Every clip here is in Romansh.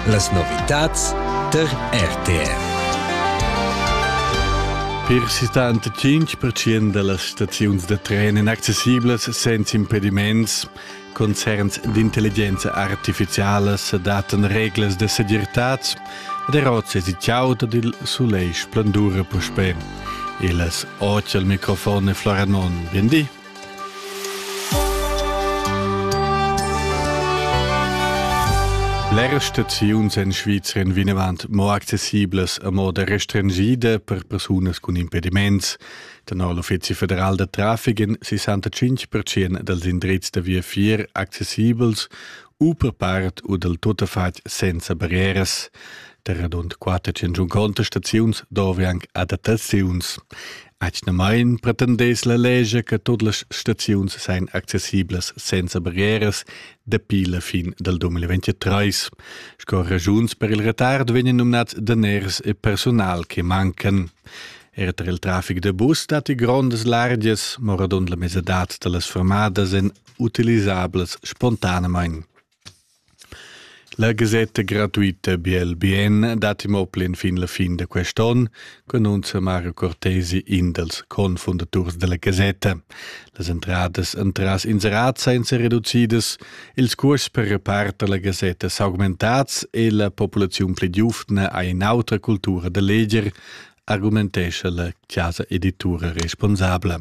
Las novitads tar RTR. Per 75% da las staziuns da tren inaccessiblas senza impediments, concerns d'intelligenza artificialas adatten reglas da segirtad ed er oz èsi chauda dil sulegl splendura puspè. Il microfon è Flora Non. Bien di. Bler staziuns en Svizra vinavant mo accessiblas a moda restringida per persunas cun impediments. Tenor l'Uffizi federal da traffic en 65% dals indrizs da viafier accessibels u per part u dal tuttafatg senza barrieras. Der rund 400 contestaziuns dove anche adattaziuns. Atgnamain pretendess la lescha che tut las staziuns sain accessiblas senza barrieras dapi la fin dal 2023. Sco ragiuns per il retard vegnan numnads daners e personal che mancan. Er tar il traffic da bus datti grondas largias, mo radund la mesadad da las fermadas èn utilisablas spontanamain. La gasetta gratuita Biel Bien dat imo plen fin la fin da quest on, cununza Mario Cortesi, in dals confundaturs della gasetta. Las entradas entras inserat senza reducidas, ils curs per repart alla gasetta s'augmentats e la populazione pli giuvna ha un'autra cultura da leger, argumentescha la casa editura responsabla.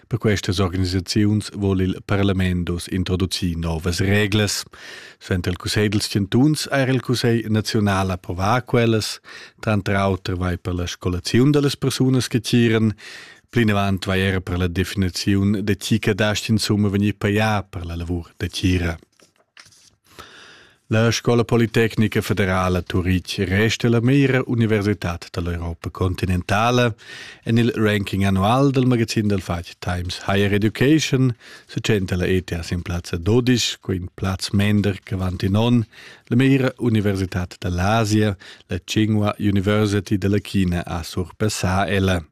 Per questas organisaziuns vol il parlament dus introducir novas reglas. Suenter il Cussegl dels Chantuns ha il Cussegl naziunal approvà quellas, tranter auter vai per la scolaziun dellas persunas che tiran, Plinavant vai era per la definiziun de chi cadast in summa vegnir paià per la lavur de tira. La Scola Politecnica Federala Turitg resta la meira universitad dall'Europa continentala. En il ranking annual del magazin del fatg Times Higher Education se tschenta la ETS in plazza 12, co in plaz mender che avanti non, la meira universitad dall'Asia, la Tsinghua University della China a surpassar ella.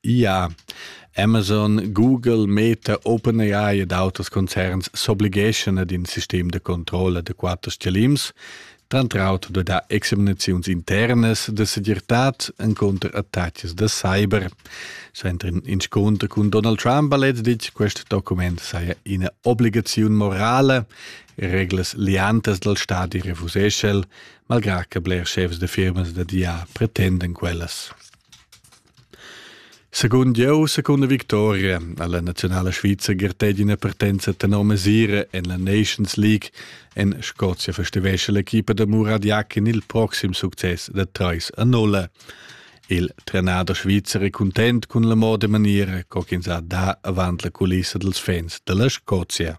Ja, Amazon, Google, Meta, OpenAI ed auters concerns s'obligeschan ad in sistem da controlla da quatter stgalims, tranter auter da examinaziuns internas da segirtad encunter attacks da cyber. Suenter in inscunter cun Donald Trump ha letztlich questo document saja ina obligaziun morale, reglas liantas dal stadi refuseschel, malgrà che bler chefs da firmas da dia pretendan quellas. Secund jeu, secunda victoria ha la naziunala svizra gartegi ina partenza tenor mesira en la Nations League. En Scozia festivescha l'equipa da Muradjak in il proxim success da 3 a 0. Il trenader svizzer è content cun la moda maniera co ch'ins ha da avant la culissa dels fans dalla Scozia.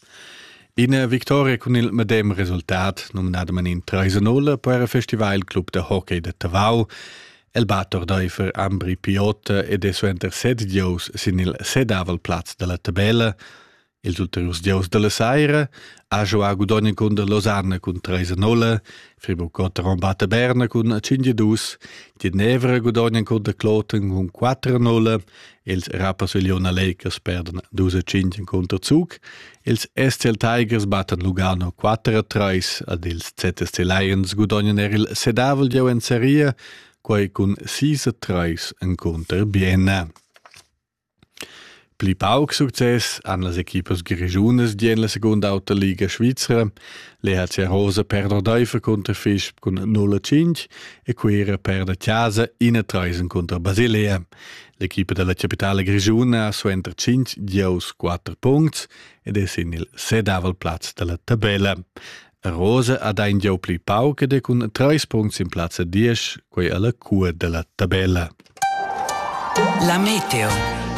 Ina victoria cun il medem resultat, numnadamain 3-0 per il festival il Club da hockey de Tavau, el bat ordaifer Ambri Piotta ed è suenter set gieus sin il sedavel plaz dalla tabella. Ils ulteriurs gieus dalla saira ha giuà Gudogna cun der Losanna cun 3-0, Friburg Gotteron batte Berna cun 5-2, Ginevra Gudogna cun der Kloten cun 4-0 Els rappaseglion a leicas perdan dus e tschintg cunter Zug. Els SCL Tigers battan Lugano 4-3, ad ils ZSC Lions gudognan er il sedavel gieu en seria, quai cun 6-3 encunter Bienna. Pli pauc success han las equipas grischunas di en la segunda auta Liga Svizra. L'EHC Rosa perda Deifer cunter Fisch cun 0-5 e Cuira perda Chiasa 1-3 cunter Basilea. L'equipa dalla capitala grischuna ha suenter 5 gieus 4 puncts ed è sin il sedavel plaz dalla tabella. Rose ha dà in gieu pli pauc ed è cun 3 puncts in plazza 10, quei alla cua della tabella. La meteo.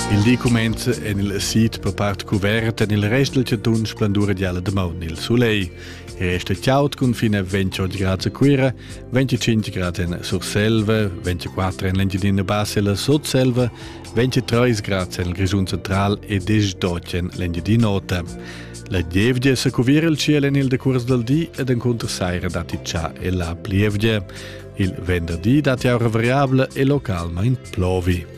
Il di cumenza en il sid per part cuvert, en il rest del chatun splendura gialla de maun il soleil. è statiaut cun fine 28 grad a Cuira, 25 grad in Surselva, 24 en l'Engiadina Bassa e la Sotselva, 23 grad en il Grischun Central e 18 en l'Engiadina Ota. La gievgia sa cuvir il ciel en il decurs dal di ed encunter saira datti già e la plievgia. Il venderdi datti aura variabile e localmain plovi.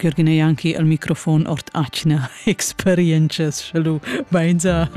Jürgen ei anche al microfon ord atgna experientschas, sche lu beinza.